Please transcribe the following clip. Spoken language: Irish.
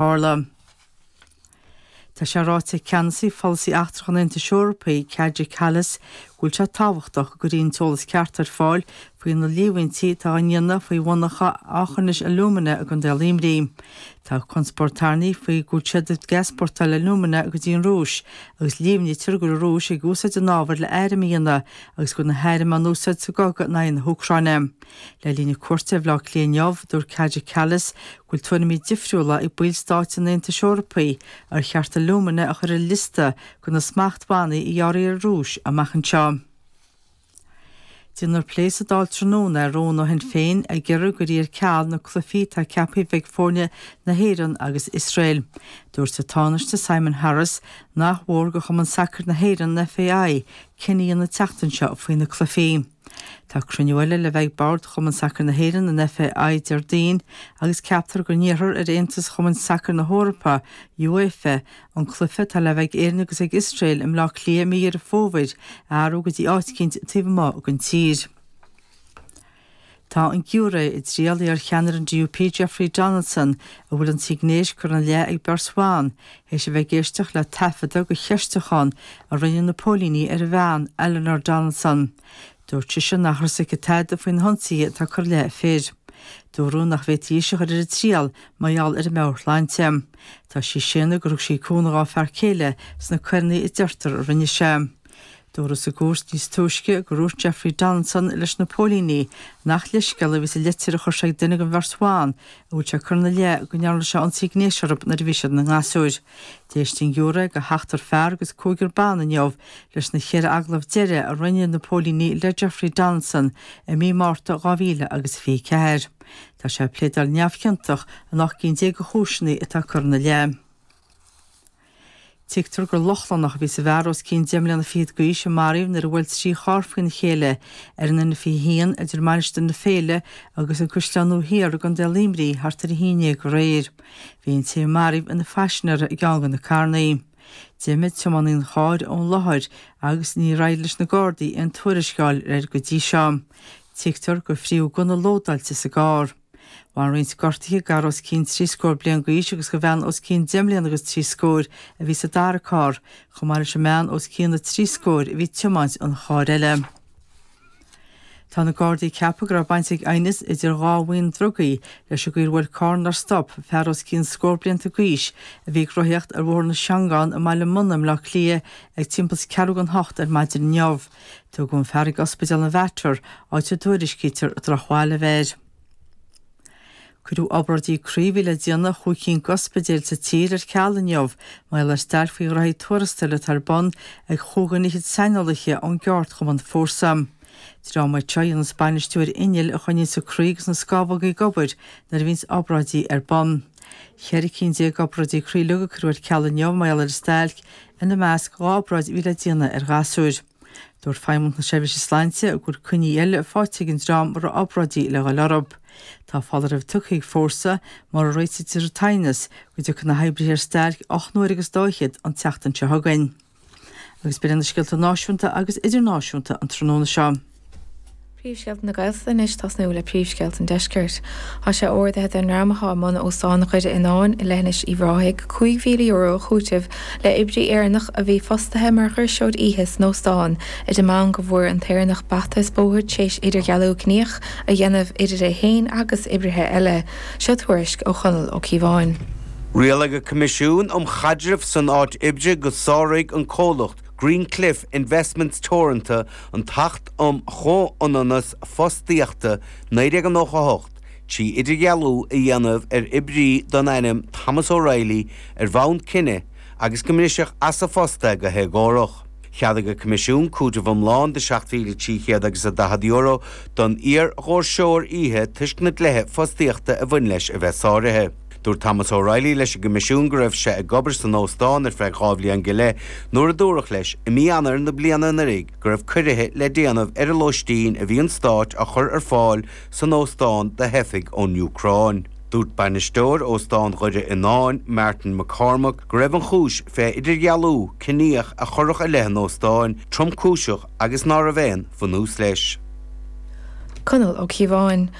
Tharla. Tá sé ráite ag Ceannasaí Pholasaí Eachtrach an Aontais Eorpaigh, Kaja Kallas, go bhfuil sé tábhachtach go gcuirfí an t-eolas ceart ar fáil faoi na líomhaintí atá á ndéanamh faoi mhonarcha Aughinish Alumina i gContae Luimnigh. Tá conspóid tarraingthe faoi go bhfuil siad ag easpórtáil alumina go dtí an Rúis agus líomhnaítear go bhfuil an Rúis ag úsáid an ábhair le airm a dhéanamh agus go bhfuil na hairm á n-úsáid sa gcogadh in aghaidh na hÚcráine. Le linn a cuairte ar Bhaile Átha Cliath inniu, dúirt Kaja Kallas go bhfuil tuairimí difriúla ag ballstáit an Aontais Eorpaí ar cheart alumina a chur ar liosta de na smachtbhannaí a ghearrfaí ar an Rúis amach anseo. Déanfar plé sa Dáil tráthnóna ar rún ó Shinn Féin ag iarraidh go gcuirfí ar ceal na cluifí atá ceaptha a bheith ag foirne na hÉireann agus Iosrael. Dúirt an Tánaiste Simon Harris nach mhór do Chumann Sacair na hÉireann, an FAI, cinneadh a dhéanamh an tseachtain seo faoi na cluifí. Tá cruinniú eile le bheith ag Bord Chumann Sacair na hÉireann, an FAI, Déardaoin agus ceaptar go n-iarrfar ar Aontas Chumainn Sacair na hEorpa, UEFA, an cluiche atá le bheith ag Éirinn agus ag Iosrael i mBleá Cliath i mí Dheireadh Fómhair a athrú go dtí áit eicínt taobh amuigh den tír. Tá an giúiré i dtriail iar-cheannaire an DUP Jeffrey Donaldson, a bhfuil ionsaithe gnéis curtha ina leith ag beirt bhan, Théis a bheith ag éisteacht le taifeadadh de cheistiúchán a rinne na póilíní ar a bhean, Eleanor Donaldson, dúirt sise nach raibh a fhios aici tada faoi na hionsaithe atá curtha i leith a fir. Dúradh nach bhféadfaí ise a chur ar a triail mar gheall ar a meabhairshláinte. Tá sí ag séanadh gur thug sí cúnamh dá fear céile sna coireanna a deirtear a rinne sé. Dúradh sa gcúirt níos túisce gur dhúirt Jeffrey Donaldson leis na póilíní nach leithscéal a bhí sa litir a chuir sé ag duine den bheirt bhan a bhfuil sé curtha ina leith go ndearna sé ionsaí gnéis orthu nuair a bhí siad ina ngasúir. D'éist an giúré de sheachtar fear agus cúigear ban inniu leis na ceithre agallamh deiridh a rinne na póilíní le Jeffrey Donaldson i mí Márta 2024. Tá sé ag pléadáil neamhchiontach in ocht gcinn déag de chúiseanna atá curtha ina leith. Tuigtear gur Lochlannach a bhí sa bhfear os cionn deich mbliana fichead d'aois a maraíodh nuair a bhuail trí charr faoina chéile ar an N21 idir Mainistir na Féile agus An Caisleán Nua Thiar i gContae Luimnigh thart ar a haon déag aréir. Bhí an té a maraíodh ina phaisinéara i gceann de na carrannaí. D'imigh tiománaí an chairr ón láthair agus níor éirigh leis na Gardaí aon tuairisc a fháil air go dtí seo. Tuigtear gur frítheadh gunna lódáilte sa gcarr. Bhain roinnt gortuithe d'fhear os cionn trí scór bliain d'aois agus do bhean os cionn deich mbliana agus trí scór a bhí sa dara carr, chomh maith leis an mbean os cionn na trí scór a bhí ag tiomáint an chairr eile. Tá na Gardaí ag ceapadh go raibh baint ag aighneas idir dhá bhuíon drugaí leis an gcaoi ar bhuail carr nár stop fear os cionn scór blianta d'aois a bhí ag rothaíocht ar Bhóthar na Seangán i mBaile Munna i mBleá Cliath ag timpeall is ceathrú don hocht ar maidin inniu. Tugadh an fear chuig Ospidéal an Mhater, áit a dtuairiscítear drochbhail a bheith air. Cuireadh obráidí croí a bhí le déanamh i chúig cinn d'ospidéil sa tír ar ceal inniu, mar gheall ar stailc faoi ghraithí tuarastail atá ar bun ag chúig dhuine fhichead saineolaithe ón gceardchumann Fórsa. Dream é seo a dhéanas bainistiú ar inneall a choinníonns an croí agus na scamhógaí ag obair nuair a bhíonns obráidí ar bun. Ceithre cinn déag d'obráidí croí uilig a cuireadh ar ceal inniu, mar gheall ar an stailc ina measc dhá obráid a bhí le déanamh ar ghasúir. Dúirt Feidhmeannacht na Seirbhíse Sláinte go bhfuil coinní eile faighte ag an dream a raibh obráidí le dhul orthu. Tá foláireamh tugtha ag Fórsa, mura réitítear an t-aighneas, go dtiocfaidh na hoibrithe ar stailc ocht n-uaire agus dá fhichead an tseachtain seo chugainn. Agus b'in iad na scéalta náisiúnta agus idirnáisiúnta an tráthnóna seo. Príomhscéalta na Gaeltachta anois tosnú le Príomhscéalta an Deiscirt. Tá sé ordaithe don ndream atá i mbun Óstán Dhoire Fhionáin i leithinis Uíbh Ráthaigh €5,000 a chúiteamh le oibrí Éireannach a bhí fostaithe mar dhoirseoir oíche san óstán ar an mbonn go bhfuair an tÉireannach bata is bóthar t'réis idirdhealú ciníoch a dhéanamh idir é féin agus oibrithe eile. Seo tuairisc ó Chonall Ó Cíobháin. Rialaigh an Coimisiún um Chaidreamh san Áit Oibre go sáraigh an comhlacht Greencliff Investments Teoranta An tAcht um Chomhionannas Fostaíochta 1998, trí idirdhealú a dhéanamh ar oibrí den ainm Thomas O'Reilly ar bhonn cine agus go mbriseadh as a phost é go héagórach. Cheadaigh an Coimisiún cúiteamh iomlán de seacht mhíle trí chéad agus a daichead euro don iar-dhoirseoir oíche toisc na dlíthe fostaíochta a bhain leis a bheith sáraithe. Dúirt Thomas O'Reilly leis an gCoimisiún go raibh sé ag obair san óstán ar feadh dhá bhliain go leith nuair a dúradh leis i mí Eanáir na bliana anuraidh go raibh ciorruithe le déanamh ar an lóistín a bhí an Stáit á chur ar fáil san óstán do theifigh ón Úcráin. Dúirt bainisteoir Óstán Dhoire Fhionáin, Martin McCormack, go raibh an chúis fé idirdhealú ciníoch a chuireadh i leith an óstáin tromchúiseach agus ná raibh aon bhunús leis. Conall Ó Cíobháin,